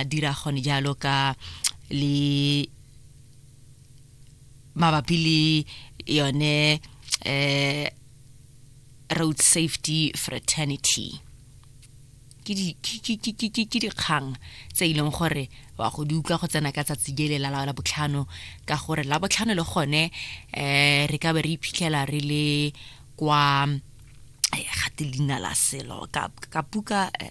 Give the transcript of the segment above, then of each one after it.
a dira gone jalo ka le mabapi le yone eh road safety fraternity ke dikgang tse e leng gore wa go di utlwa go tsena ka tsatsi le la la botlhano ka gore la botlhano le gone um re ka be re iphitlhela re le kwa eh, gate leina la selo ka puka eh,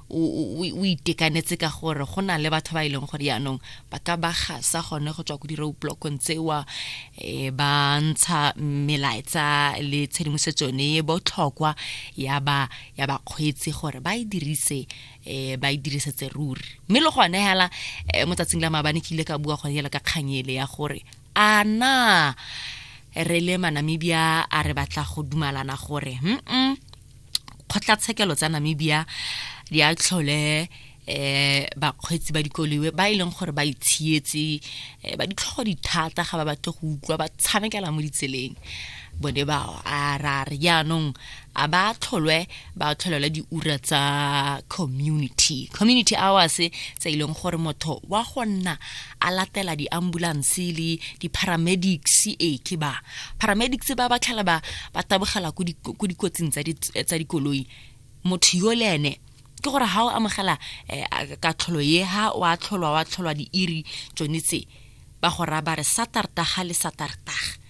o itekanetse ka gore go na le batho ba e leng gore yaanong ba ka ba gasa gone go tswa ko di-road blockong tsewa um ba ntsha melaetsa le tshedimosetso ne e botlhokwa ya ba ya bakgweetsi gore ba e dirise um ba e dirisetse ruri mme le gone fela um mo tsatsing la maabane ke ile ka bua gone fela ka kganyele ya gore a na re le manamibia a re batla go dumalana gore mm kgotlatshekelo tsa namibia di a tlhole eh bakgweetsi ba dikoliwe ba e leng gore ba itshietse eh, ba ditlhogo dithata ga ba batle go utlwa ba tshamekela mo ditseleng bone ba a ra re jaanong a ba tlholwe ba tlholelwa diura tsa community community hours tse e leng gore motho wa go nna a latela di-ambulance le di-paramedics ee ke ba paramedics ba ba tlhela ba ba tabogela ko dikotsing tsa dikoloi motho yo le ene ke gore ga o amogela eh, katlholo ye ha wa tlholwa wa tlholwa diiri tsone tse ba go raba re satartaga le satartaga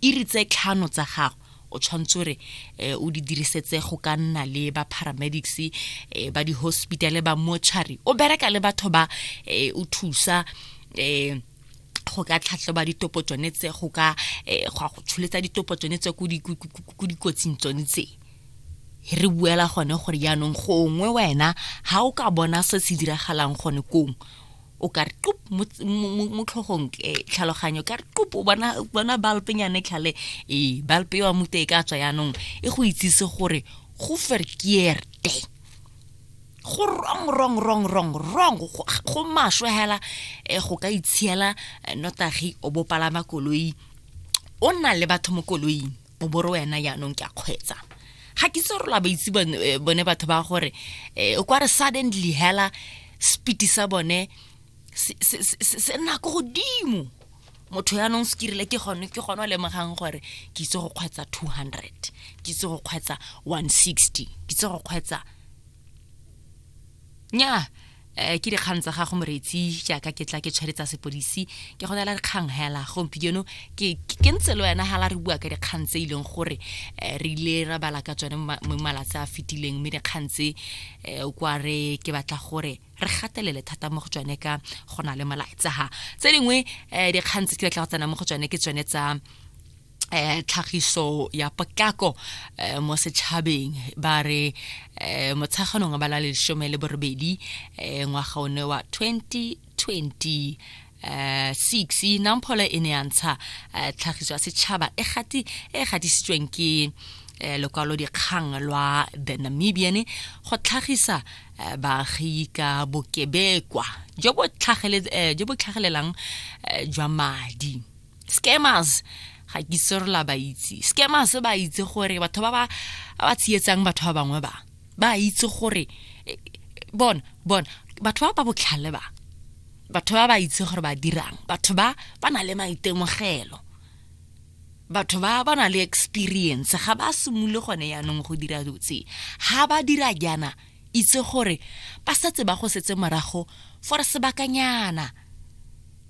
Iri tse tlhano tsa gago o tshwanetse re eh, o di dirisetse go ka nna le ba paramedics eh, ba di-hospitale ba mochari o bereka le batho ba eh, o thusa um go ka tlhatlhoba ditopo tsone tse go ka um go go tsholetsa ditopo tsone tse ko dikotsing tsone tse re buela gone gore jaanong gongwe wena ga o ka bona se se diragalang gone kong o ka re qup mo tlhogong eh, tlhaloganyo ka re qup o bona bona balpenyane tlhale ee balpe wa mute e ka tswa yaanong e go itsise gore go verkeerde go wrong wrong wrong wrong wrong go maswe hela eh, go ka itshela eh, notagi o bopalama koloi o nna le batho mo koloing o bo re wena yaanong ke a kgwetsa ga ke itse gore ba itse eh, bone batho ba gore eh, o kwa re suddenly hela spiti sa bone se nna ko godimo motho yaanong se kirile ke gone ke gone o lemogang gore ke itse go kgwetsa two hundred ke itse go kgwetsa one sixty ke itse go kgwetsa nyaa um ke dikgang tsa gago moretsi jaaka ke tla ke tshwere tsa sepodisi ke go neela dikgang hela gompieno ke ntse le wena hala re bua ka dikgang tse e leng gore um re ile ra bala ka tsone mo malatsi a fetileng mme dikgang tse um kwa re ke batla gore re gatelele thata mo go tsone ka go na le molaetsa ga tse dingwe um dikgang tse ke batla go tsena mo go tsone ke tsone tsa eh tlhagiso ya potlako eh, mo setšhabeng ba re eh, motsheganong ba la lesome le borobedi eh, ngwaga one wa 2020 eh, six namphola e ne ya ntsha eh, tlhagiso ya setšhaba e gati e gatisitsweng ke eh, lokwalo dikgang lwa the namibian go tlhagisa eh, baagi ka bokebekwa jo bo tlhagele- eh, jo bo tlhagelelang eh, jwa madi scammers ga ke itse re la ba itse scammers ba itse gore batho ba ba ba tsietsang batho ba bangwe ba ba itse gore eh, bona bona batho ba ba botlhale ba batho ba ba itse gore ba dirang batho ba ba na le maitemogelo batho ba ba na le experience ga ba simole gone yaanong go dira dutse ga ba dira jaana itse gore ba setse ba go setse morago for sebakanyana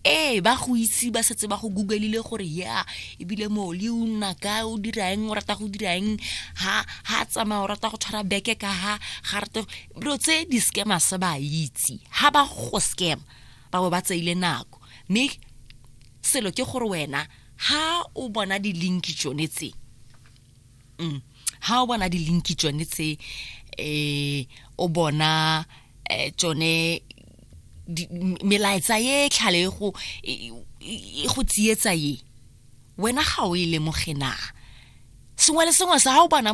ee ba go itse ba setse ba go googlile gore ya ebile moli o nna ka o dira eng o rata go dira eng ha ha tsamaya o rata go tshwara beke ka ha ga rate dilo tse di-scammer se ba itse ha ba go scam ba bo ba tseile nako mme selo ke gore wena ha o bona di-link tsone tse mm. ha o bona di-linki tsone tse um o bona um tsone melaetsa ye tlhale e go e, e go tsietsa ye wena ga o e lemoge na sengwe le sengwe sa ga o bona